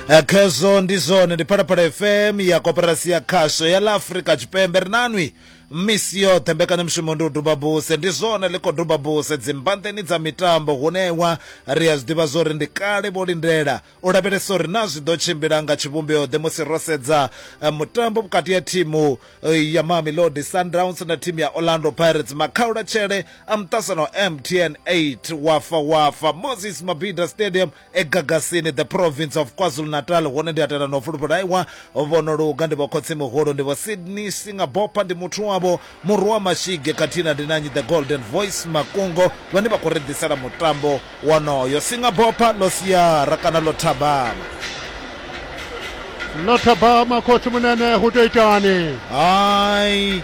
Eh, khezwo ndi zwone ndi phalaphala fm ya koperasi ya khasho ya ḽa afrika tshipembe ri nanwi misi yoṱhe mbekanyamushumo ndi u duba buse ndi zwone ḽi khou duba buse dzimbanḓeni dza mitambo hunewa ri a zwi ḓivha zwo ri ndi kale vho lindela u lavhelesa uri na zwi ḓo tshimbila nga tshivhumbeo ḓe musi ro sedza eh, mutambo vhukati ha thimu eh, ya mamelodi sundowns na thimu ya orlando pirates makhaulatshele a muṱasano mtn 8 wafa wafa moses mabida stadium e Gagasini, The Province of KwaZulu-Natal, hune ndi a tenda na u fulufhelaiwa, Vho Noluga ndi vho Khotsi-muhulu, ndi vho Sydney Singabopha, ndi muthu wavho Murhu wa Mashige khathihi na Ndinanyi The Golden Voice Makungo vhane vha khou ri ḓisela mutambo wonoyo. Singabopha, Ḽo siara kana ḽo thabama. Ḽo thabama, Khotsi-munene, hu tou itani? Hai!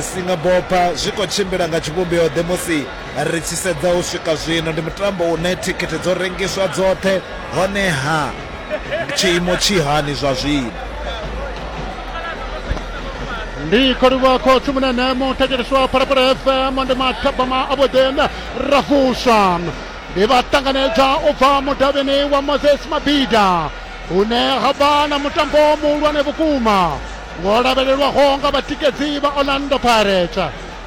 Singapore zwi khou tshimbila nga tshivhumbeo-ḓe musi ri tshi sedza u swika zwino? Ndi mutambo une thikhithi dzo rengiswa dzoṱhe, honeha tshiimo tshi hani zwa zwino? ndi kholiwa khotsi munene muthetshelesi wa phalaphala fm ndi mathabama a vhuḓi ra vuswa ndi vha ṱanganedza u bva mudavhini wa moses mabida hune ha vha na mutambo muhulwane vhukuma Vho lavhelelwaho nga vhatikedzi vha Orlando Pirates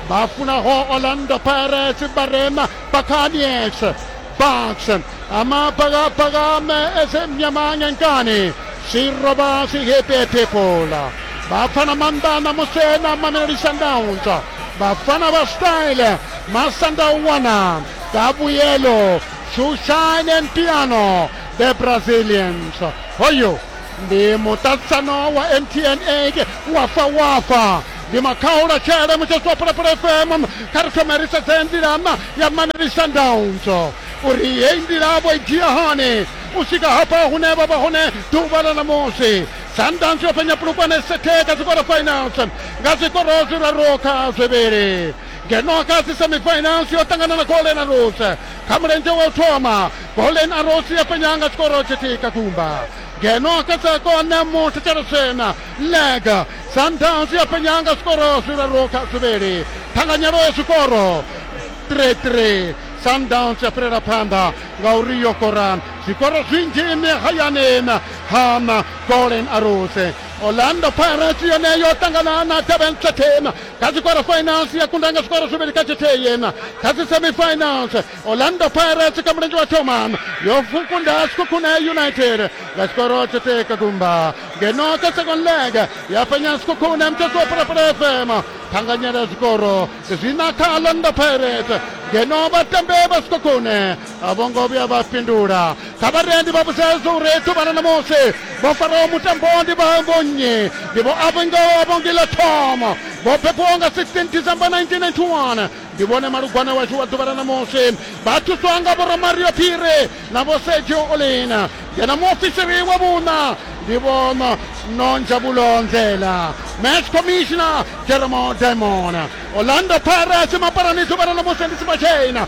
vha funaho Orlando Pirates vha re na Buccaneers, Bucks, Amabhakabhaka Ezimnyama Ngenkani, Siroba Sihipi People. Bafana Mandana Musena Mamelodi Sundowns, Bafana ba Style Masandawana, Kabuyelo, Shoeshine and Piano, the Brazilians. Hoyo ndi muṱaṱisano wa mtn eke wafa wafa ndi makhaula tshele mutsheso wa pulapula fm kha ri thome ri sedze nḓilama ya maneli sundowns uri heyi nḓila vho i dzhia hani u swika hafha hune vha vha hone ḓuvha ḽa ṋamusi sundowns yo fhenya pulukwane sethe kha zwikoro finals nga zwikoro zwiraru kha zwivhili ngeno kha dzi semifinals yo ṱangana na golden arrows kha mulenzhe wa u thoma golden arrows ya fhenya nga tshikoro tshithihi kha gumba ngeno kha dza kona muthu tshelesena leg sundowns ya fhenya nga zwikoro zwiraru kha zwivhili ṱhanganyelo ya zwikoro 3-3 sundowns ya fhirela phanḓa ngauri yo koran zwikoro zwinzhi ine hayani hana golden arrows orlando pirates yone yo ṱangana na durban certain kha dzi quarter finals ya kunda nga zwikoro zwivhili kha tshithihi yena kha dzi semifinals orlando pirates kha mulenzhe wa thoma yo kunda sikhukhune united nga tshikoro tshithihi ka gumba ngeno kha second leg ya fhenya sikhukhune mutshasi wa pulapula fm thanganyela zwikoro zwi na kha orlando pirates ngeno vhatambi vha sikhukhune a vho ngo vhuya vha fhindula kha vharendi vha vhudzedza uri ḓuvhana ṋamusi vho faraho mutambo ndi vha vhonnyi ndi vho avhongoho avhongila thomo vho bebiwaho nga 16 december 1991 ndi vhone malugwana washu wa ḓuvha la ṋamusi vha thuswa nga vhoramario phiri na vho sergio olina ngeno muofisiri wa vhuṋa ndi vho nonja vhulonzela match commissioner jeremo diamond orlando pirates mapalani ḓuvha la ṋamusi ndi sibachina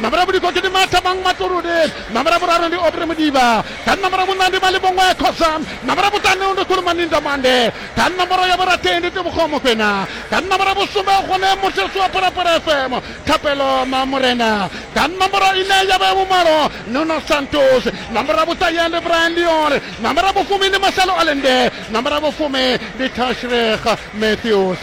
Ṋamba ḽa vhulikoki ndi Mathabang Matululi. Ṋamba ḽa vhuraru ndi Aubrey Mudiba. Kha ṋamba ḽa vhuṋa ndi Malibongwe ya Khoza. Ṋamba ḽa vhuṱanu ndi Khulumani Ndamande. Kha ṋomboro ya vhurathi ndi Tebogo Mokwena. Kha ṋamba ḽa vhusumbe hune Mutsheswa wa Phalaphala FM, Thapelo Mamorena. Kha ṋomboro ine ya vha ya vhumalo Nuno Santos. Ṋamba ḽa vhuṱahe ndi Brian Liore. Ṋamba ḽa vhufumi ndi Marcelo Allende. Ṋamba ḽa vhufumi ndi Tashreekh Matthews.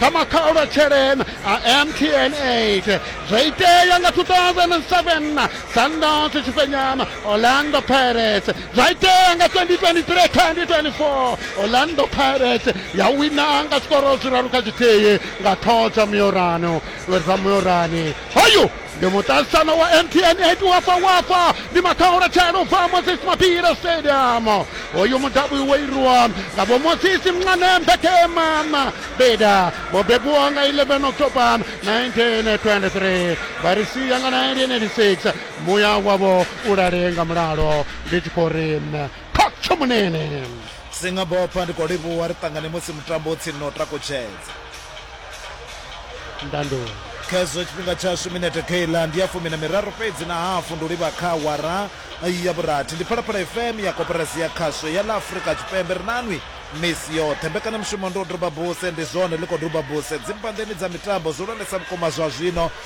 kha makhaulu a tshelena a mtn 8 zwo itea nga 2007 sandos tshifhenyama orlando pirates zwa itea nga 2023 2024 orlando pirates ya wina nga zwikoro zwiraru kha tshithihi nga thoho dza miorano dza miorani hoyu Ndi muṱaṱisano wa MTN 8 wa fa wa fa ndi maṱhaholetshelo u bva Moses Mabhida Stadium. Uyu mudavhi wo irwa nga vho Moses Mncane Mbekema Mabhida vho bebiwaho nga 11 October 1923 vha ri sia nga 1986. Muya wavho u lale nga mulalo ndi tshi khou ri Khotsi Tshomunene. Singabopha ndi khou livhuwa ri ṱangane musi mutambo u tsini na u takutshedza. ndandulo khezwo tshifhinga tshashu minete keiḽa ndi ya fumi na miraru fhedzi na hafu ndi u livha kha wara ya vhurathi ndi phalaphala fm ya koperasi ya khasho ya ḽa afurika tshipembe ri nanwi misi yoṱhe mbekanyamushumo ndi u duba buse ndi zwone ḽi khou duba buse dzimbanḓeni dza mitambo zwihulwanesa vhukuma zwa zwino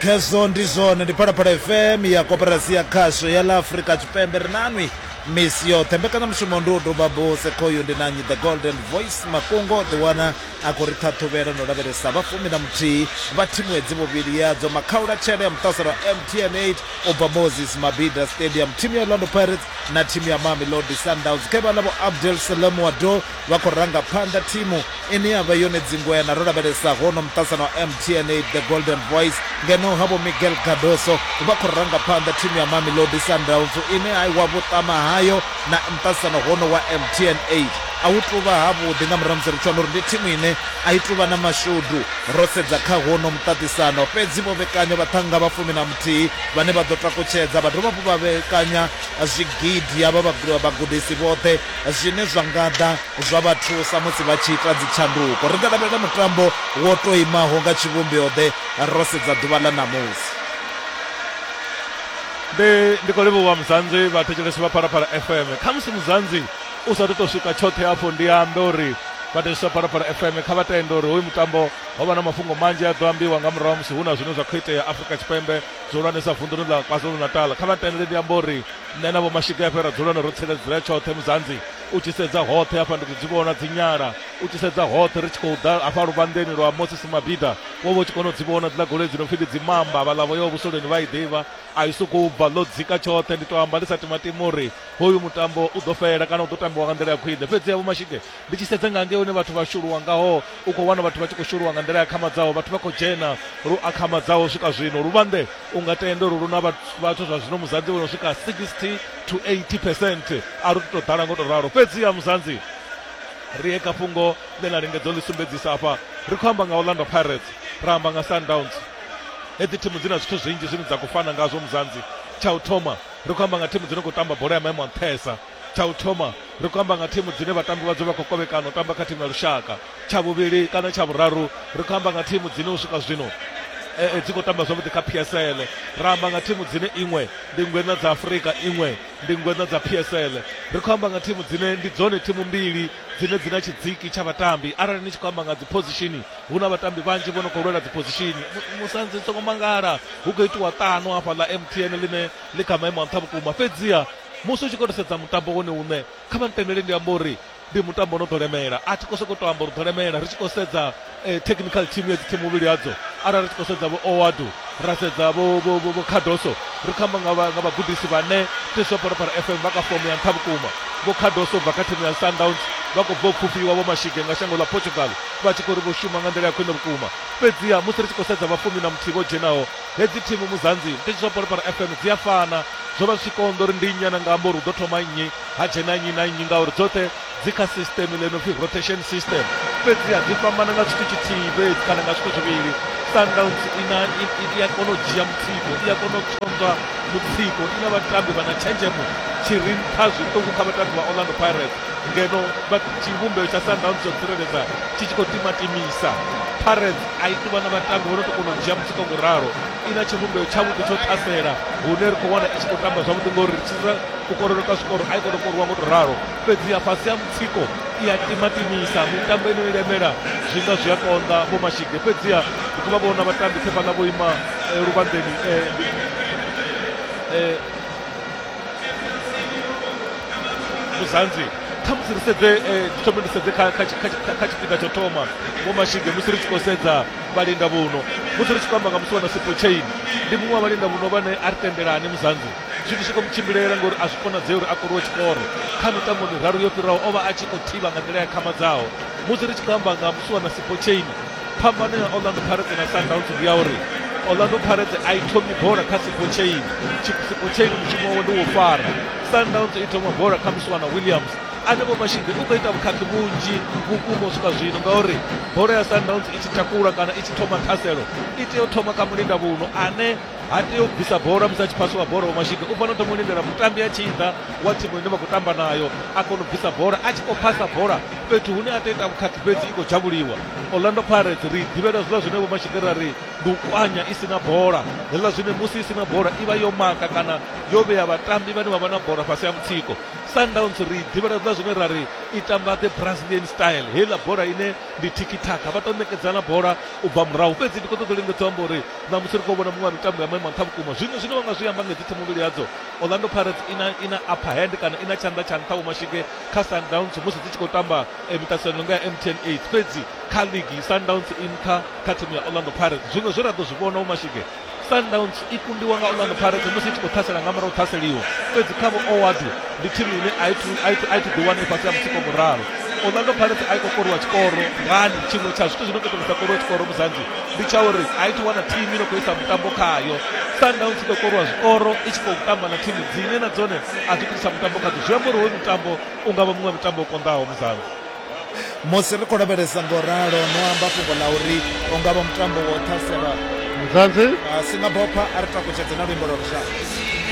Khezwo ndi zwone, ndi Phalaphala FM ya Koporasi ya Khasho ya ḽa Afrika Tshipembe. Ri na nwi misi yoṱhe. Mbekanyamushumo ndi u duba buse khoyu ndi na nnyi The Golden Voice Makungo ḓi wana a khou ri ṱhaṱhuvhela na u lavhelesa vha fumi na muthihi vha thimu hedzi vhuvhili yadzo makhaulatshele tshele ya muṱaselo wa MTN 8 u bva Moses Mabhida Stadium, thimu ya Orlando Pirates na thimu ya Mamelodi Sundowns. Khe vha ḽa vho Abdel Salam Wado vha khou ranga phanḓa thimu ine ya vha yone dzingweana ro lavhelesa hono muṱasana wa mtna the golden voice ngeno ha vho miguel gadoso vha khou ranga phanḓa thimu ya mamelodi sundowns ine a iwa vhuṱama hayo na muṱasana hono wa mtna a hu tuvha havhuḓi nga murahu musi ri tshi wana uri ndi thimu ine a i tuvha na mashudu ro sedza kha hono muṱaṱisano fhedzi vho vhekanya vhaṱhanga vha fumi na muthihi vhane vha ḓo takutshedza vha dovha vho vha vhekanya zwigidi ya vha vhagudisi vhoṱhe zwine zwa nga ḓa zwa vha thusa musi vha tshi ita dzitshanduko. Ri nga lavhelela mutambo wo tou imaho nga tshivhumbeo-ḓe ro sedza ḓuvha ḽa ṋamusi? Ndi, ndi khou livhuwa Muzanzi, vhathetshelesi vha Phalaphala FM. Khamusi Muzanzi u sa athu tou swika tshoṱhe hafho, ndi ambe uri vhathetshelesi vha Phalaphala FM kha vha tende uri hoyu mutambo ho vha na mafhungo manzhi a ḓo ambiwa nga murahu ha musi hu na zwine zwa khou itea Afrika Tshipembe, zwihulwanesa vunḓuni ḽa KwaZulu-Natal. Kha vha ntendele ndi ambe uri Nṋe na Vho-Mashigefhe ra dzula na ro tsireledzea tshoṱhe Muzanzi u tshi sedza hoṱhe hafha ndi ḓo dzi vhona dzi nyala u tshi sedza hoṱhe ri tshi khou ḓa hafha luvhanḓeni lwa Moses Mabida wo vha u tshi kona u dzi vhona dziḽa goloi dzi no pfi ndi dzi mamba vhaḽa vho yaho vhusoleni vha i ḓivha a i sokou bva ḽo dzika tshoṱhe ndi tou amba ndi sa timatima uri hoyu mutambo u ḓo fhela kana u ḓo tambiwa nga nḓila ya khwine fhedzi ya Vho-Mashige Ndi tshi sedza nga ngei hune vhathu vha shuluwa ngaho, u khou wana vhathu vha tshi khou shuluwa nga nḓila i akhamadzaho. Vhathu vha khou dzhena lu akhamadzaho u swika zwino. Luvhanḓe u nga tende uri lu na vhathu zwa zwino Muzanzi vho no swika 60 to 80 percent. A lu tu tou ḓala nga u tou ralo, fhedziha Muzanzi ri ye kha fhungo ḽe na lingedza u ḽi sumbedzisa afha. Ri khou amba nga Orlando Pirates, ra amba nga Sundowns. Hedzi thimu dzi na zwithu zwinzhi zwine dza khou fana ngazwo Muzanzi. Tsha u thoma, ri khou amba nga thimu dzi no khou tamba bola ya maimo a nṱhesa. Tsha u thoma, ri khou amba nga thimu dzine vhatambi vhadzo vha khou kovhekana u tamba kha thimu ya lushaka. Tsha vhuvhili kana tsha vhuraru, ri khou amba nga thimu dzine u swika zwino e, dzi khou tamba zwavhuḓi kha PSL. Ra amba nga thimu dzine iṅwe ndi ngweṋa dza Afrika, iṅwe ndi ngweṋa dza PSL. Ri khou amba nga thimu dzine ndi dzone thimu mbili dzine dzi na tshidziki tsha vhatambi. Arali ni tshi khou amba nga dziphozishini, hu na vhatambi vhanzhi vho no khou lwela dziphozishini. Musanzi, ni songo mangala, hu khou itiwa ṱano hafhaḽa MTN ḽine ḽi kha maimo a nṱha vhukuma. Fhedziha musi u tshi khou tou sedza mutambo wone uṋe kha vha ntendele ndi amba uri ndi mutambo no ḓo lemela a thi khou sokou tou amba uri ḓo lemela ri tshi khou sedza eh, technical team ya dzithimu muvhili hadzo arali ri tshi khou sedza vho owadu ra sedza vho vho- vho- vho khadoso ri khou amba nga vha- nga vhagudisi vhane tiso phalaphala fm vha kha fomo ya nṱha vhukuma vho khadoso bva kha thimu ya sundowns vha khou bva u pfufhiwa vho mashige nga shango ḽa portugal vha tshi khou ri vho shuma nga nḓila ya khwine vhukuma fhedziha musi ri tshi khou sedza vhafumi na muthihi vho dzhenaho Hedzi thimu Muzanzi ndi Tshisoporipari FM dzi a fana, zwo vha zwi tshi konḓa uri ndi nnyi a no nga amba uri hu ḓo thoma nnyi ha dzhena nnyi na nnyi ngauri dzoṱhe dzi kha sisṱeme ḽe no pfi rotation system. Fhedziha dzi fhambana nga tshithu tshithihi fhedzi kana nga zwithu zwivhili, Sundowns i na i a kona u dzhia mutsiko, i a kona u tswonzwa mutsiko, i na vhatambi vha na tshenzhemo tshi re nṱha zwiṱuku kha vhatambi vha Orlando Pirates ngeno tshivhumbeo tsha Sundowns tsha u tsireledza tshi tshi khou timatimisa. Pirates. a i tuvha na vhatambi vho no to kona u dzhia mutsiko ngo ralo i na tshivhumbeo tshavhuḓi tsho ṱhasela hune ri khou wana i tshi khou tamba zwavhuḓi ngori ri tshisa kukorelo ka zwikoro a i kona u koriwa ngo to ralo fhedzi ya fhasi ya mutsiko i a timatimisa mitambo ino i lemela zwi nga zwi a konḓa vho mashige fhedziha ri khou vha vhona vhatambi tshe fhaḽa vho ima eh, luvhanḓeni eh, eh, muzanzi khamusi ri sedze eh, thome ri sedze kha tshifhinga tsho thoma vho mashige musi ri tshi khou sedza vhalinda vhuno musi ri tshi khou amba nga musi wana sipo chain ndi muṅwe wa vhalinda vhuno vhane a ri tendelani muzanzi zwithu zwi khou mutshimbilela ngori a zwi konadzei uri a koriwe tshikoro kha mitambo miraru yo fhiraho o vha a tshi khou thivha nga nḓila ya khamadzaho musi ri tshi khou amba nga musi wana sipo chain phambano ya orlando pirates na sundowns ndi ya uri orlando pirates a i thomi bola kha sipotsheini sipotsheini mushumo wawe ndi wo fara sundowns i thoma bola kha muswana williams anevho mashinge u khou ita vhukhakhi vhunzhi vhukuma u swika zwino ngauri bola ya sundowns i tshi takula kana i tshi thoma ṱhaselo i tea u thoma kha mulinda vhuno ane ha tei u bvisa bola musi a tshi phasiwa bola wa mashika u fanela u thoma u lindela mutambi a tshi ḓa wa thimu ine vha khou tamba nayo a kona u bvisa bola a tshi khou phasa bola fhethu hune a tou ita vhukhakhi fhedzi i khou dzhavhuliwa orlando pirates ri ḓivhela zwiḽa zwine vho mashika ra ri ndi u kwanya i si na bola heḽa zwine musi i si na bola i vha yo maka kana yo vhea vhatambi vhane vha vha na bola fhasi ya mutsiko sundowns ri ḓivhela zwiḽa zwine ra ri i tamba the brazilian style heiḽa bola ine ndi tikitaka vha tou ṋekedzana bola u bva murahu fhedzi ndi khou ṱoḓa u lingedza amba uri Ṋamusi ri khou vhona muṅwe wa mitambo ya maimo nṱha vhukuma zwino zwine vha nga zwi amba nga dzi themamvhili yadzo. Orlando Pirates i na, i na upper hand kana i na tshanḓa tsha nṱha vhomashige kha Sundowns musi dzi tshi khou tamba eh, miṱaṱisano no nga ya MTN 8 fhedzi kha ligi Sundowns i nṱha kha thimu ya Orlando Pirates. Zwino zwe ra ḓo zwi vhona vhomashige Sundowns i kundiwa nga Orlando Pirates musi i tshi khou ṱhasela nga murahu ṱhaseliwa fhedzi kha vho Owadu ndi thimu ine a i thu- a i thu- a i thu ḓi wana i fhasi ha mutsiko wa muralo. Orlando Pirates a i khou koriwa tshikoro ngani tshiṅwe tsha zwithu zwi no khou ita uri sa koriwe tshikoro muzanzi ndi tsha uri a i thu wana thimu ino khou isa mutambo khayo sundowns i ḓo korwa zwikoro i tshi khou tamba na thimu dzine na dzone a dzi khou mutambo khadzo zwi amba uri hoyu mutambo u nga vha muṅwe mutambo u konḓaho muzalo musi ri khou lavhelesa ngo ralo no amba fhungo ḽa uri u nga vha mutambo wo ṱhaselwa muzanzi a si nga bopha a ri takutshedze na luimbo lwa lushaka